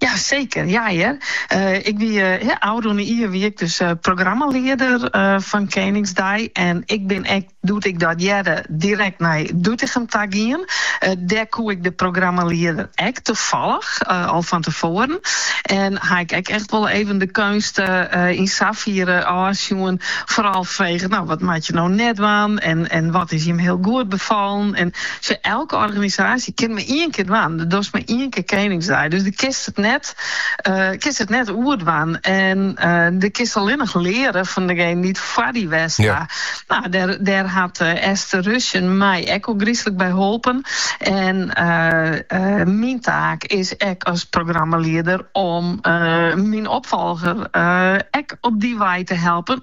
Ja seker, ja hear. Ik wie ôfrûne jier wie ik dus programmalieder fan Keningsdei en ik bin ek doe't ik dat hearde direkt nei Doetinchem ta gien. Dêr koe ik de programmalieder ek tefallich al fan tefoaren en ha ik ek echt wol even de keunst yn safiere ôfsjoen, foaral frege no wat moat je no net dwaan en wat is jim hiel goed befallen en sa elke organisaasje. Ja, kinst mar ien kear dwaan, do dochst mar ien kear Keningsdei. Dus do kinst it net, kinst it net oer dwaan. En do kinst allinnich leare fan degenen dy't foar dy west ha. No, dêr, dêr hat Esther Ruesen my ek ôfgryslik by holpen. En myn taak is ek as programmalieder om myn opfolger ek op dy wei te helpen.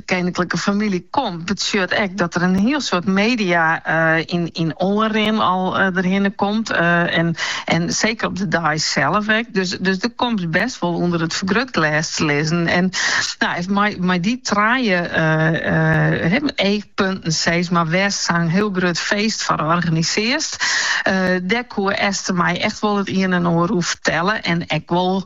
De keninklike famylje komt betsjut ek dat der in hiel soad media yn oanrin al derhinne komt en seker op de dei sels ek. Dus do komst bêst wol ûnder it fergrutglês te lizzen. En mei dy trije eachpunten sis mar wêr'tst sa'n hiel grut feest foar organisearst. Dêr koe Esther my echt wol it ien en oar oer fertelle en ek wol.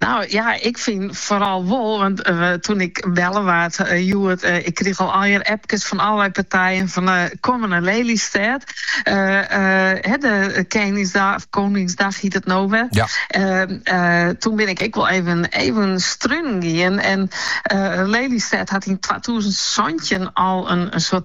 No ja, ik fyn foaral wol, want toen ik belle waard hjoed, ik krige al allegear appkes fan allerlei partijen fan kommen nei Lelystêd, de Keningsdag of Koningsdag hiet it no wer. Ja. Toen bin ik ek wol even strunen gien en Lelystêd hat yn twatûzen santjin al in soad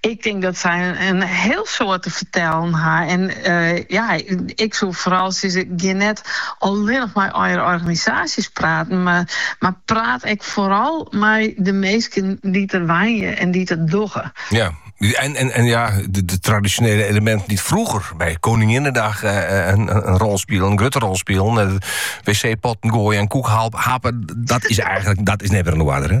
Ik tink dat sy in hiel soad te fertellen ha. En ja, ik soe foaral sizze, gean net allinnich mei allegear organisaasjes praten, mar praat ek foaral mei de minsken dy't der wenje en dy't it dogge. Ja, en, en, en ja, de, de tradisjonele eleminten dy't froeger by Koninginnedag uh, in, in rol spilen, in grutte rol spilen, wc-potten goaie en koekhappen, dat is eigenlik, dat is net mear oan 'e oarder, hè?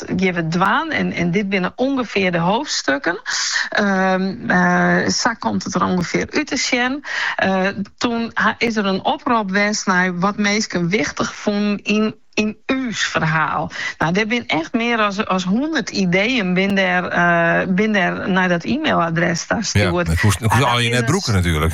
dat geane we dwaan en dit binne ûngefear de hoofdstukken. Sa komt it der ûngefear út te sjen. Toen is der in oprop west nei wat minsken wichtich fûnen yn ús ferhaal. Nou, der binne echt mear as hûndert ideeën binne der nei dat e-mailadres ta stjoerd. Ja, dat koest allegearre net brûke natuerlik.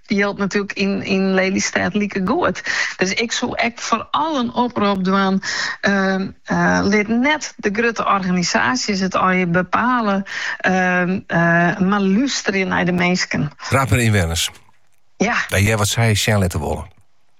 Jildt natuerlik yn Lelystêd likegoed. Dus ik soe ek foaral in oprop dwaan, lit net de grutte organisaasjes it allinnich bepale, mar lústerje nei de minsken. Praat mei ynwenners, ja, hear wat sy sjen litte wolle.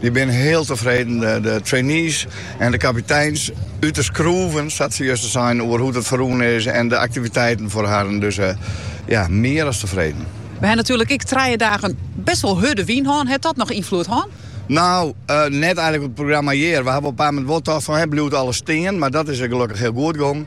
Dy binne hiel tefreden, de trainees en de kapiteins út de skroeven, sa't se justjes seinen, oer hoe't it ferrûn is en de aktiviteiten foar harren. Dus ja, mear as tefreden. Wy ha natuerlik ek trije dagen best wol hurde wyn hân. Hat dat noch ynfloed hân? No, net eigentlik op it programma hjir. Wy hawwe op in paar momenten wol tocht fan, bliuwt alles stean? Mar dat is gelokkich hiel goed gongen.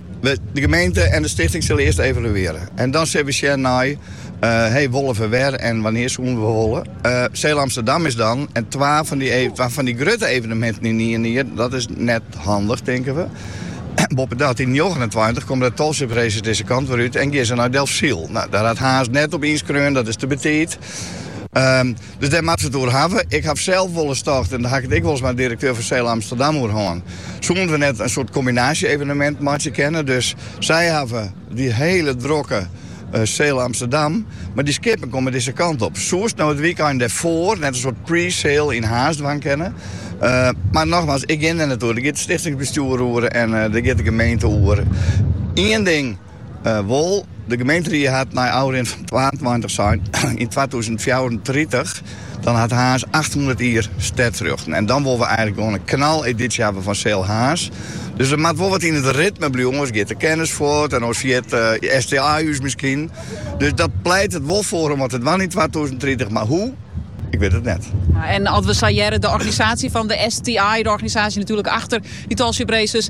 De gemeente en de stichting sille earst evaluearje en dan sil we sjen nei hey wolle we wer en wannear soenen we wolle. Sail Amsterdam is dan en twa fan dy grutte eveneminten yn ien jier, dat is net handich tinke we. Boppedat, yn njoggenentweintich komme de Tall Ships Races dizze kant wer út en gean se nei Delfsyl. Dêr hat Harns net op ynskreaun, dat is te betiid. Dus dêr moatte we it oer hawwe. Ik haw sels wolris tocht, en dêr haw ik it ek wolris mei de direkteur fan Sail Amsterdam oer hân, soenen we net in soart kombinaasje-evenemint meitsje kinne. Dus sy hawwe dy hiele drokke Sail Amsterdam, mar dy skippen komme dizze kant op. Soest no it wykein dêrfoar net in soart pre-sail yn Harns dwaan kinne. Mar nochmaals, ik gean dêr net oer. Dêr giet it stichtingsbestjoer oer en dêr giet de gemeente oer. Ien ding, Wol, de gemeenteried hat nei ôfrin fan twaentweintich sein, yn twatûzen fjouwerentritich dan hat Harns achthûndert jier stedrjochten. En dan wolle we eigenlik gewoan in knaleditie hawwe fan Sail Harns. Dus der moat wol wat yn it ritme bliuwen, oars giet de kennis fuort en oars ferjit STI ús miskien. Dus dat pleitet der wol foar om wat te dwaan yn twatûzen tritich, mar hoe? Ik wit it net. En als we sa de organisatie van de STI, de organisatie natuurlijk achter die Tall Ships Races,